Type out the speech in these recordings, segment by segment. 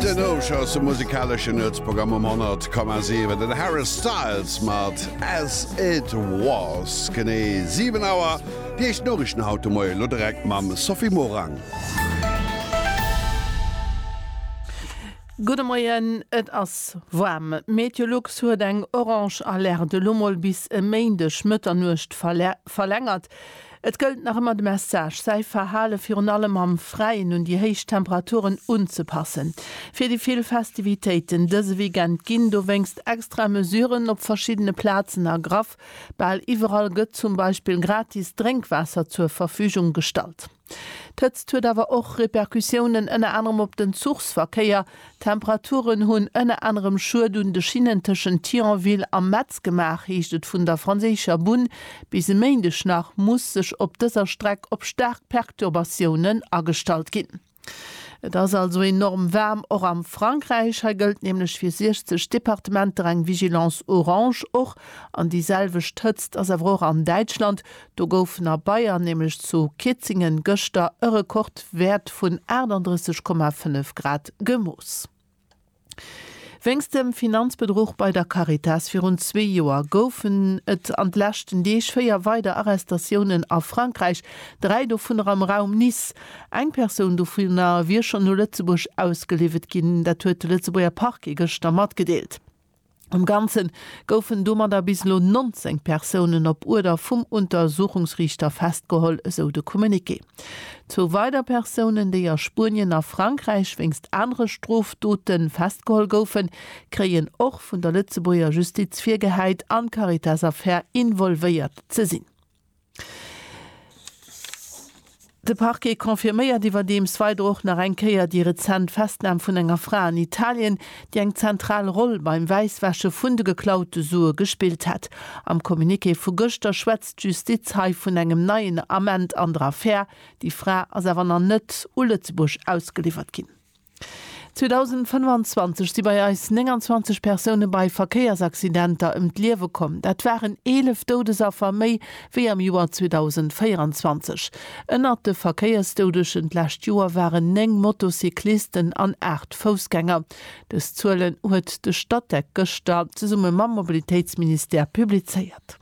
Den Hosch ass de musikaleschen Nuetsprogramm um 100,7. Den Harry Styles mat As It Was. Genee 7 Auer. Déi éischt Noriichten haut de Moie, elo direkt mam Sophie Morang. Gudde Moien, Et ass waarm. Meteolux huet eng orange Alerte elo mol bis e Méindeg Mëtternuecht verlängert. Et gëllt nach ëmmer de Message, säi Verhale virun allem am Fräien un déi héich Temperaturen unzepassen. Fir déi vill Festivitéiten dëse Weekend ginn dowéinst extra Mesuren op verschiddene Plazen ergraff. Bal iwwerall gëtt zum Beispill gratis Drénkwaasser zur Verfügung gestallt. D'Hëtzt huet awer och Repercussiounen ënner anerem op den Zuchsverkéier, D'Temperaturen hunn ënner anerem Schued un de Schinnen tëschent Thionville a Metz gemaach, heescht et vun der franséischer Bunn. Bis e Méindeg nach muss sech op dëser Streck op staark Perturbatiounen agestallt ginn. Et ass also enorm waarm, och am Frankräich. Hei gëllt nämlech fir 60 Departementer eng Vigilance orange. Och an déi selwecht Hëtzt ass awer och an Däitschland. Do gouf na Bayern nämlech zu Kietzingen gëschter e Rekordwäert vun 38,5 Grad gemooss. Wéinst dem Finanzbedruch bei der Caritas virun zwee Joer goufen et an de leschten Deeg véier weider Arrestatiounen a Frankräich, dräi dovunner am Raum Nice. Eng Persoun dovunner wier schonn no Lëtzebuerg ausgeliwwet ginn, dat huet de Lëtzebuerger Parquet gëschter matgedeelt. Am Ganze goufen domadder bis elo 19 Persounen op Uerder vum Untersuchungsriichter festgeholl, esou de Communiqué. Zwou weider Persounen, déi a Spuenien a Frankräich wéinst anere Strofdote festgeholl goufen, kréien och vun der Lëtzebuerger Justiz virgehäit, an d'Caritas-Affär involvéiert ze sinn. De Parquet confirméiert iwwerdeems weider och nach eng Kéier déi rezent Festnam vun enger Fra an Italien, déi eng zentral Roll beim Wäisswäsche vun de geklaute Sue gespillt hätt. Am Communiqué vu gëschter schwätzt d'Justiz hei vun engem neien Ament an der Affär. Déi Fra ass awer nach net u Lëtzebuerg ausgeliwwert ginn. 2025 si bei eis 29 Persoune bei Verkéiersaccidenter ëm d'Liewe komm. Dat waren 11 Doudesaffer méi wéi am Joer 2024. Ënnert de Verkéiersdoudegen d'lescht Joer waren 9 Motocyclisten an 8 Foussgänger. Dës Zuelen huet de Statec gëschter zesumme mam Mobilitéitsministère publizéiert.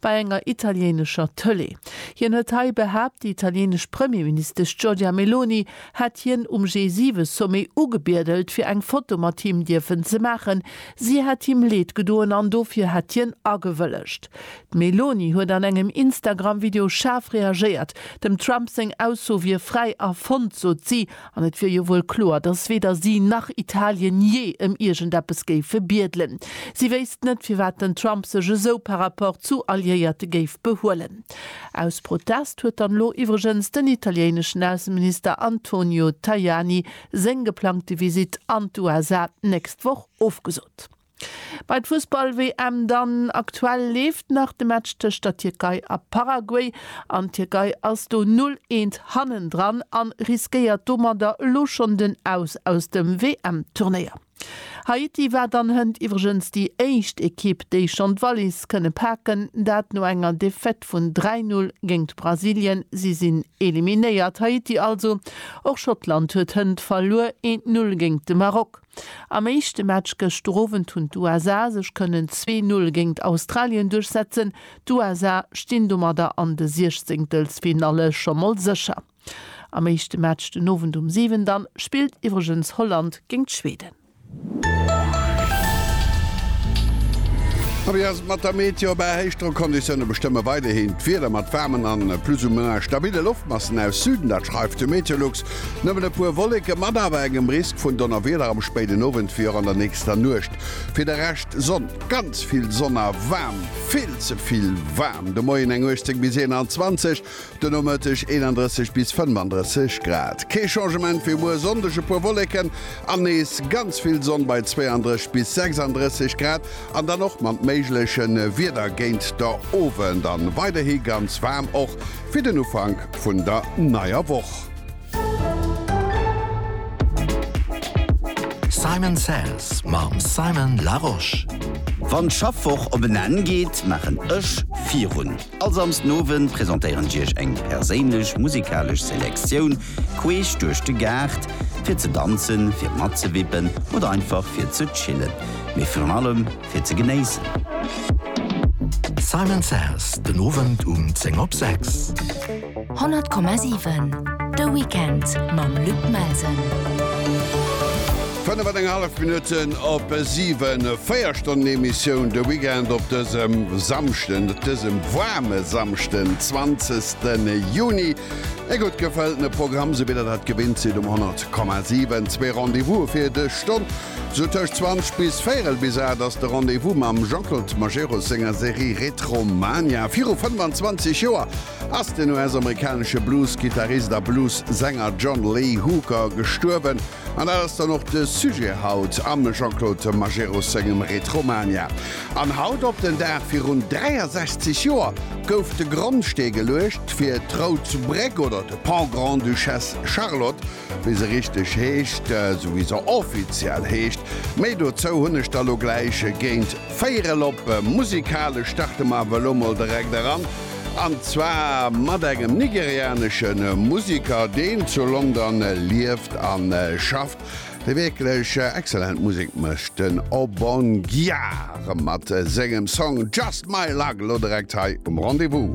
bei enger italieenescher Tëlee. Hien huet hei behaapt, déi italienesch Premierministesch Giorgia Meloni hätt hien um G7-Sommet ugebiedelt, fir eng Foto mat him dierfen ze maachen. Si hätt him Leed gedoen an dofir hätt hien agewëllegt. D'Meloni huet an engem Instagram-Video schaarf reagéiert. Dem Trump seng Ausso wier fräi erfonnt, sot si, An et wier jo wuel kloer, datt weder si nach Italien jee ëm iergendeppes géife biedelen. Si wéisst net, firwat den Trump sech esou par rapport zu Alliéierte géif behuelen. Aus Protest huet dann elo iwwregens den italieneschen Ausseminister Antonio Tajani seng geplangte Visitt an d'USA d'nächst Woch ofgesot. Bei d'Fussball-WM dann, aktuell leeft nach de Match tëscht der Tierkei a Paraguay an d'Tierkei ass do 0, eent hannendran an riskéiert domadder elo schonn den Aus aus dem WM-Turnéier. Haiti war dann hënt iwwregens déi éischt Ekipp, déi schonn d'Wallis kënne paken, dat no enger Defaite vun 3, 0 géingt Brasilien. Si sinn eliminéiert, Haiti also. Och Schottland huet hënt verluer, eent 0 géingt de Maroc. Am éischte Match gëschter Owend hunn d'USA sech kënnen 2-Null géingt Australien duerchsetzen. D'USA stinn domadder an de Siechzéngtelsfinalle scho mol sécher. Am éischte Match den Owend um 7 dann spillt iwwregens Holland géingt Schweden. A wéi ass et mat der Meteo? Bäi Héichdrockconditioune bestëmme weiderhin d'Wieder mat waarmen a plus ou moins stabille Loftmassen aus Süden. Dat schreift de Meteolux. Nëmmen e puer Wolleke mat awer engem Risk vun Donnerwieder am spéiden Owend wéi och an der nächster Nuecht. Fir de Rescht Sonn, ganz vill Sonn a waarm, vill ze vill waarm. De Moien eng 18 bis 21, de Nomëtteg 31 bis 35 Grad. Kee Changement wéi muer Sonndeg, e puer Wolleken an nees ganz vill Sonn bei 32 bis 36 Grad an dann och mat méigleche Wieder géint der Owend. An weiderhi ganz waarm och fir den Ufank vun der neier Woch. Simon Says mam Simon Larosche. Wann d'Schaffwoch op en Enn geet, maachen ech virun. All Samsden Owend presentéieren ech iech eng perséinlech musikalesch Selektioun queesch duerch de Gaart, fir ze danzen, fir matzewippen oder einfach fir ze chillen. Mee virun allem. fir ze genéissen. Simon Says den Owend um 10 op 6. 100,7 De Weekend mam Luc Melsen. 5,5 Minutten op 7, véier Stonnen Emissioun de Weekend op dësem Samschden, dësem waarme Samschden, 20. Juni. E gutt gefëltene Programm, sou wéi Der dat gewinnt sidd um 100,7. Zwee Rendez-vouse fir dës Stonn, Sou tëscht 20 bis véirel bis 8 ass de Rendez-vous mam Jean-Claude Majerus senger Serie Retromania. Viru 25 Joer ass den US-amerikanesche Blues-Gittarist a Blues-Sänger John Lee Hooker gestuerwen an dat ass dann och de Sujet haut am Jean-Claude Majerus sengem Retromania. An haut op den Dag virun 63 Joer gouf de Grondstee geluecht fir d'Rout Bréck oder de Pont Grande-Duchesse Charlotte Wéi se richteg heescht, esou wéi se offiziell heescht, méi dozou hunn ech der lo gläich géint véierel op. Musikalesch starte mer awer elo mol direkt eran, an zwar mat engem nigerianesche Musiker, deen zu London lieft a schafft, dee wierklech excellent Musek mécht, den Obongia mat sengem Song Just My Luck, elo direkt hei um Rendez-Vous.